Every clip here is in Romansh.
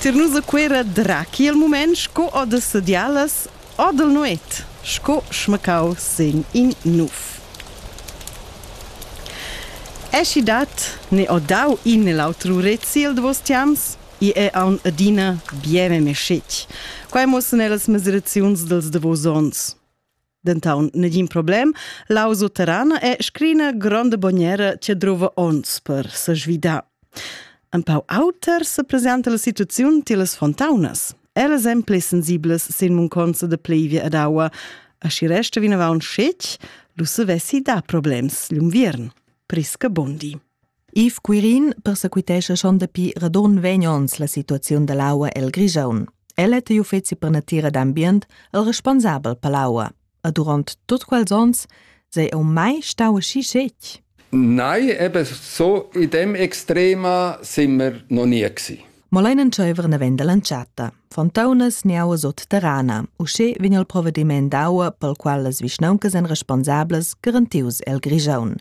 Tir nus a Cuera drachi il mument sco o da sedialas o dal nuet, sco schmacau sin in nuf. Eschi dat ne ho dau in e l'autro rezi il davos tiams, i è aun adina bien e mescetg. Quai muossan ellas mesiraziuns dels davos ons. Dentaun negin problem, lau sutterran e scrina gronda bognera che druva ons per sesvidar. Un pau auter se presenta la situaziun tilas fontaunas. Elas èn pli sensibles sin munconza de plevia ed aua, a si resta vinavant scetg, lu se vessi da problems l'unviern. Prisca Bondi. Yves Quirin persequitescha schon dapi radon vegn ons la situaziun dall'aua el Grigiun. El è igl uffeci per natira d'ambient el responsabel per l'aua. E durant tot quels ons sei eu mai stau aschi scetg? Nei, eben so, in dem extrema sind wir noch nie gewesen. mo lein entscheiver naven dall'entschatta. Fontaunas niauas sotterrana. Uschè vegn il provvediment d'aua pel qual las vischnauncas èn responsablas garantius el Grigiaun.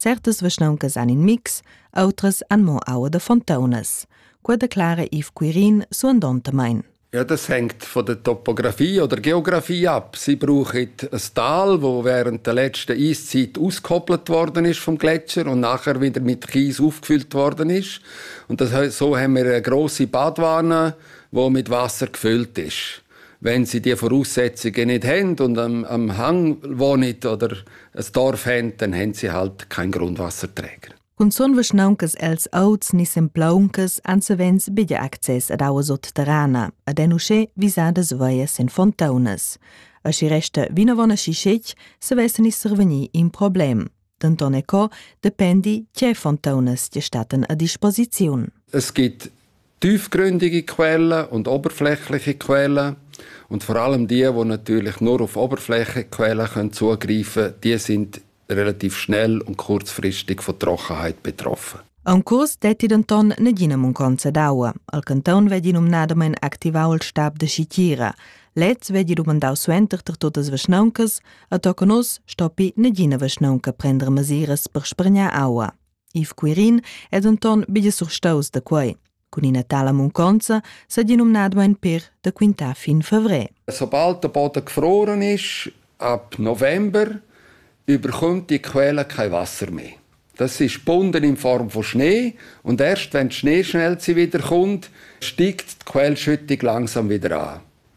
Certas vischnauncas han in mix, outras han mo aua da fontaunas. Quella declara Yves Quirin suandontamain. Ja, das hängt von der Topografie oder Geografie ab. Sie brauchen ein Tal, wo während der letzten Eiszeit ausgekoppelt worden ist vom Gletscher und nachher wieder mit Kies aufgefüllt worden ist. Und das, so haben wir eine grosse Badwanne, die mit Wasser gefüllt ist. Wenn sie die Voraussetzungen nicht haben und am, am Hang wohnen oder ein Dorf haben, dann haben sie halt keinen Grundwasserträger. Cun sun vischnauncas els auts ni semplauncas ansavens biglia access ad aua sotterrana, ad en uschè visadas veias en fontaunas. A si resta vinavon aschi schec, se vessen is survegni in problem. denton e co dependi tgei fontaunas ti staten a disposiziun. Es gibt tiefgründige Quellen und oberflächliche Quellen. Und vor allem die, die natürlich nur auf oberflächliche Quellen können zugreifen können, die sind relativ schnell und kurzfristig von Trockenheit betroffen. An curs detti denton negina munconza d'aua. Al canton vegli numnadamein activau il stab de Schitira. Lez vegli dumandau suenter ter totas vischnauncas, A toca nus stoppi negina vischnaunca prender mesiras per spargnar aua. Yves Quirin è denton bia surstaus da quei. Cun ina tala munconza s'è di nominado ein per da quintar fin fevrer. Sobald der Boden gefroren ist, ab November, überkommt die Quelle kein Wasser mehr. Das ist gebunden in Form von Schnee und erst wenn der Schnee schnell wiederkommt, steigt die Quellschüttung langsam wieder an.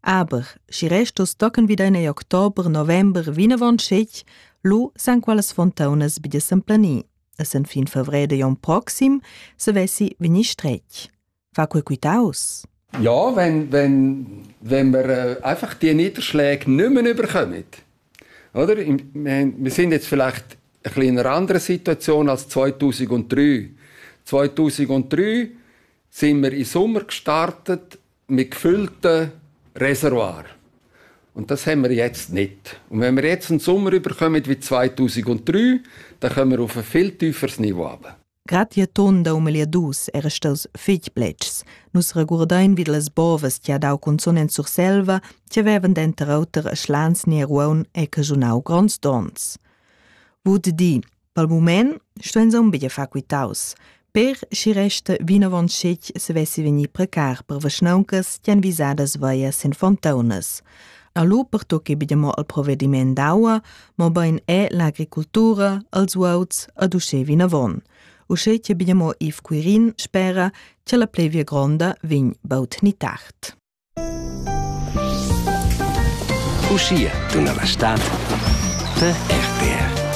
Aber, schi restos tochen vida in ei october, november, vinavon scetg, lu san quellas fontaunas bi de s'emplanir. Essend fin fevrèr de Jon proxim, se vessi vegnir stretg. Fa quel quitaus? Ja, wenn, wenn, wenn wir äh, einfach die Niederschläge nicht mehr überkommen. Oder? Wir sind jetzt vielleicht ein bisschen in einer anderen Situation als 2003. 2003 sind wir in Sommer gestartet mit gefüllten Reservoir. Und das haben wir jetzt nicht. Und wenn wir jetzt einen Sommer überkommen wie 2003, dann kommen wir auf ein viel tieferes Niveau runter. Grad je ton da umel dus era staus fich bletschs. Nus regurdain vid las bovas che ha dau canzun en Surselva, che vevan denter auter a Schlans ne Ruaun e cajunau gronds dons. Vud di, Pel mumaint sto insomma be far quitaus, per chi resta vinavant schi'd se vessi vegnì precar per vaschnauncas tian visadas veias in fontaunas. Allo pertocchi be mo al provedimaint d'aua, mobain è l'agricultura, als uauts ad uschè vinavon. Uschè che be mo Yves Quirin spera che la plevia gronda vegn baut ni tard. Uschia tuna la stad per RTR.